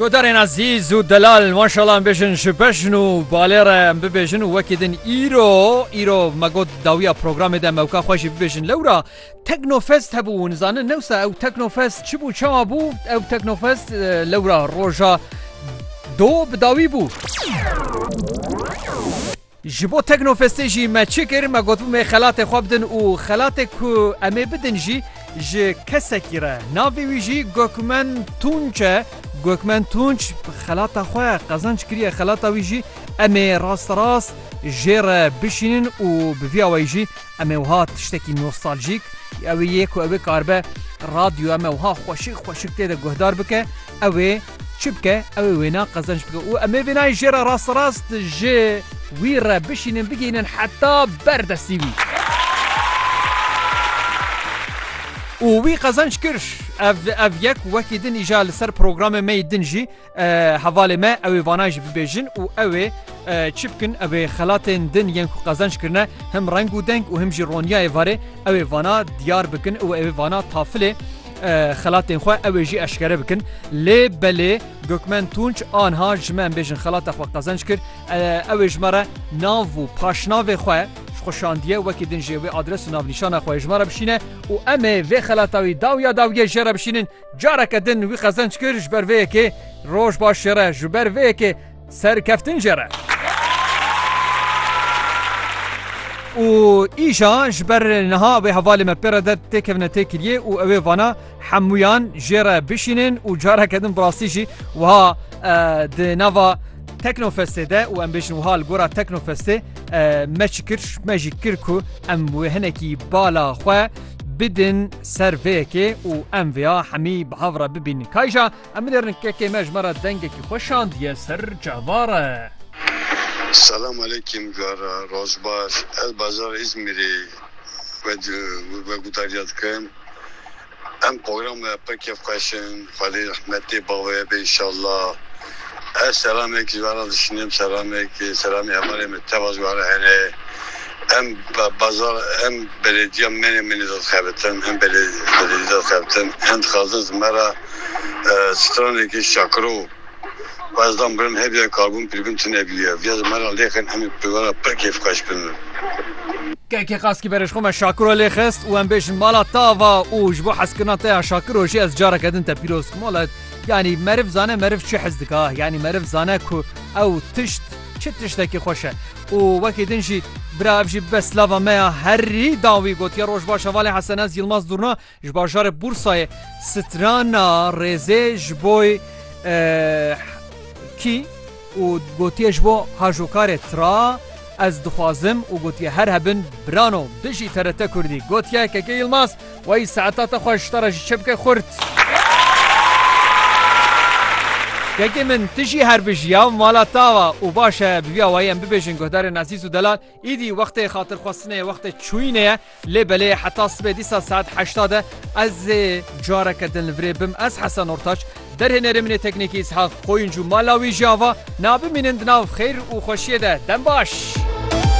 Godarên Azîz û Delal maşala em bêjin ji bejn û balê re em bibêjin û wekî din îro îro me got dawiya programê de mewka xwe jî bibêjin lewra Teknofest hebû û nizanin newsa ew Teknofest çi bû çawa bû ew Teknofest lewra roja do bi dawî bû. Ji bo Teknofestê jî me çi kir? Me got bûmê xelatê xwe bidin û xelatê ku em ê bidin jî ji kesekî re. Navê wî jî Gökmen Tunç e. Gökmen Tunç xelata xwe qezanc kiriye. Xelata wî jî em ê rasterast jê re bişînin û bi vî awayî jî em ê wiha tiştekî nostaljîk ew ê yê ku ew ê karibe radyoya me wiha xweşik xweşik tê de guhdar bike. Ew ê çi bike? Ew ê wêna qezenç bike û em ê vênayê jê re rasterast ji wî re bişînin bigihînin heta ber destî wî. Û wî qezenç kir. Ev ev yek wekî din îja li ser programê me yî din jî hevalê me ew ê vanayê jî bibêjin û ew ê çi bikin ew ê xelatên din yên ku qezenç kirine him reng û deng û him jî roniyayê varê ew ê vana diyar bikin û ew ê vana tafilê xelatên xwe ew ê jî eşkere bikin. Lê belê Gökmen Tunç anha ji me em bêjin xelata xwe qezenc kir. Ew ê ji me re nav û paşnavê xwe ji xwe şandiye wekî din jê wê adres û navnîşana xwe yê ji me re bişîne û em ê vê xelata wî dawiya dawiyê jê re bişînin. Careke din wî qezenc kir ji ber vê yekê roj baş jê re ji ber vê yekê Serkeftin jê re. Û îşa ji ber niha wê hevalê me pê re der tê kevne tê kiriyê û ewê vana hemûyan jê re bişînin û careke din bi rastî jî wiha di nava Teknofestê de û em bêjin wiha li gora Teknofestê me çi kir me jî kir ku em wê hinekî bala xwe bidin ser vê yekê û em vêya hemî bi hev re bibînin. Kayja Em nêrin kekê me ji me re dengekî xwe şandiye ser çava re. Selam aleykim Gara roj baş ez bajara Îzmîrê vegudariya dikim em programe peke xweş in xwedê rehmetê baweye be înşallah ez selamek ji wera dişînim selamek selamê hevalê min teva ji wera hene em bajara em belediya menê min ê dixebitin em belediya dixebitin em dixwazin ji me re stranekî şakiro ez dam birin hebîya karbon pîlbin tune bîya vîya zi mera lêxin hemî pîlvara pir kêfxweş bin min. Kekê qas kî berêj xwe me şakiro lê xist û em bêjin mala te ava û ji bo hezkirina te ya şakiro jî ez careke din te pîroz kim welat yanî meriv zane meriv çi hez dike yanî meriv zane ku ew tişt çi tiştekî xweş e û wekî din jî bira ev jî bibe silava me ya herî dawî gotiye roj baş hevalê Hesenez Yilmaz Durna Ji bajarê Bursayê strana rêzê ji bo kî û gotiye ji bo hajokarê tra ez dixwazim û gotiye her hebin birano bijî TRT Kurdî gotiye Keke Yilmaz wey saeta te xwe ji te re jî çê bike xurt. Kekê min tu jî herbijî ya mala tawa û baş e bi vîya wayî em bibêjin guhdarên Ezîz û Delal Îdî wextê xatirxwestinê ye, wextê çûyînê ye. Lê belê heta sibê dîsa saet heşta de ez ê careke din li virê bim. Ez Hesen Ortaç, derhê nêrîminê teknîkî Îshaq Koyuncu mala wî jî ava. Na bimînin di nav xêr û xweşiyê de. Dem baş.